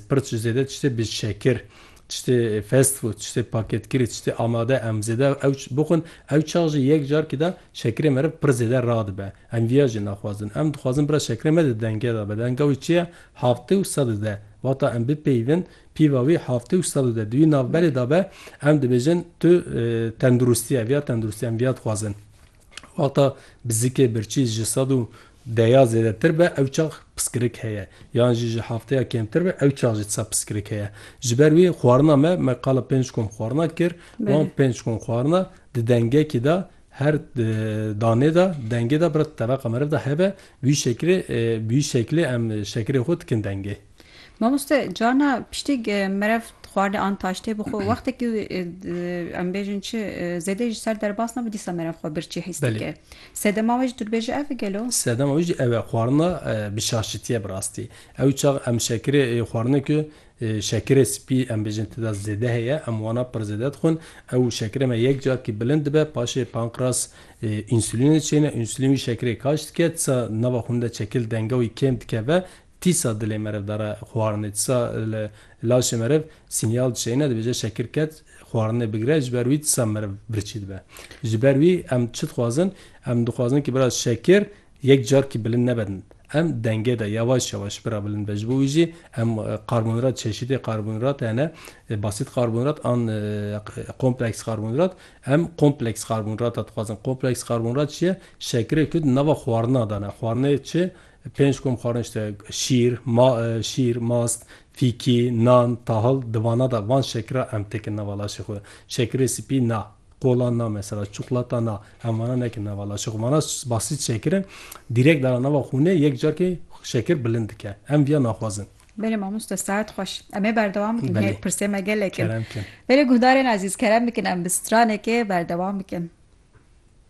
Pir ji zêde tiştê bi şekir, tiştê fast food, tiştê paketkirî, tiştê amade em zêde ew bixwin. Ew çax jî yek carkî de şekirê meriv pir zêde radibe. Em viya jî naxwazin. Em dixwazin bira şekirê me di denge de be. Denga wî çi ye? Heftê û sed û deh. Wata em bipeyivin pîva wî heftê û sed û deh. Di wî navberê de be em dibêjin tu tenduristî ye. Viya tenduristî em viya dixwazin. Wexta bizikê birçî ji sed û deya zêdetir be ew çax piskirik heye yan jî ji hevteya kêmtir be ew çax jî tisa piskirik heye. Ji ber wî xwarina me, me qala pênc kom xwarina kir, wan pênc kom xwarina di dengekî de her danê de dengê de bira tebeqa meriv de hebe bi wî şekilê bi wî şekilê em şekirê xwe dikin dengê. Mamoste carna piştîg merev xwarinê an taştê bi xwe wextekî em bêjin çi zêde ji ser derbas nebe dîsa merev xwe birçî hîs dike. Sedema wê jî tu dibêje ev e gelo? Sedema wê jî ew e xwarina bi şaşitiye bi rastî. Ew çax em şekirê xwarine ku şekirê spî em bêjin tida zêde heye em wana pir zêde dixwin. Ew şekirê me yek carekî bilind dibe paşê pankreas însulînê diçêne, însulîn wî şekirê kaş dike disa nava xwînê de çekil denga wî kêm dikeve. Tîsa dilê meriv dare xwarinê, tîsa li laşê meriv sînyal dişeyne, dibêje şekir ket xwarinê bigire, ji ber wî tîsa meriv birçî dibe. Ji ber wî em çi dixwazin? Em dixwazin ku biraz şekir yek carkî bilind nebe din. Em dengê de yewaş yewaş bira bilind be. Ji bo wî jî em karbonhîdrat, çeşîtê karbonhîdrat hene, basît karbonhîdrat an kompleks karbonhîdrat. Em kompleks karbonhîdrat dixwazin. Kompleks karbonhîdrat çi ye? Şekirê ku di nava xwarina de ne. Xwarinê çi? Pênc kom xwarin işte şîr, ma, şîr, mast, fîkî, nan, tahil di vana de van şekira em têkin nava laşê xwe. Şekirê sipî na, qolan na mesela, çuqlata na, em vana nekin nava laşê xwe. Vana basît şekir in, dîrek dana nava xûnê yek carkê şekir bilind dike. Em viya naxwazin. Belê mamoste saet xweş. Em ê berdewam bikin. Hê pirsê me gelek in. Belê guhdarên ezîz kerem bikin em bi stranekê berdewam bikin.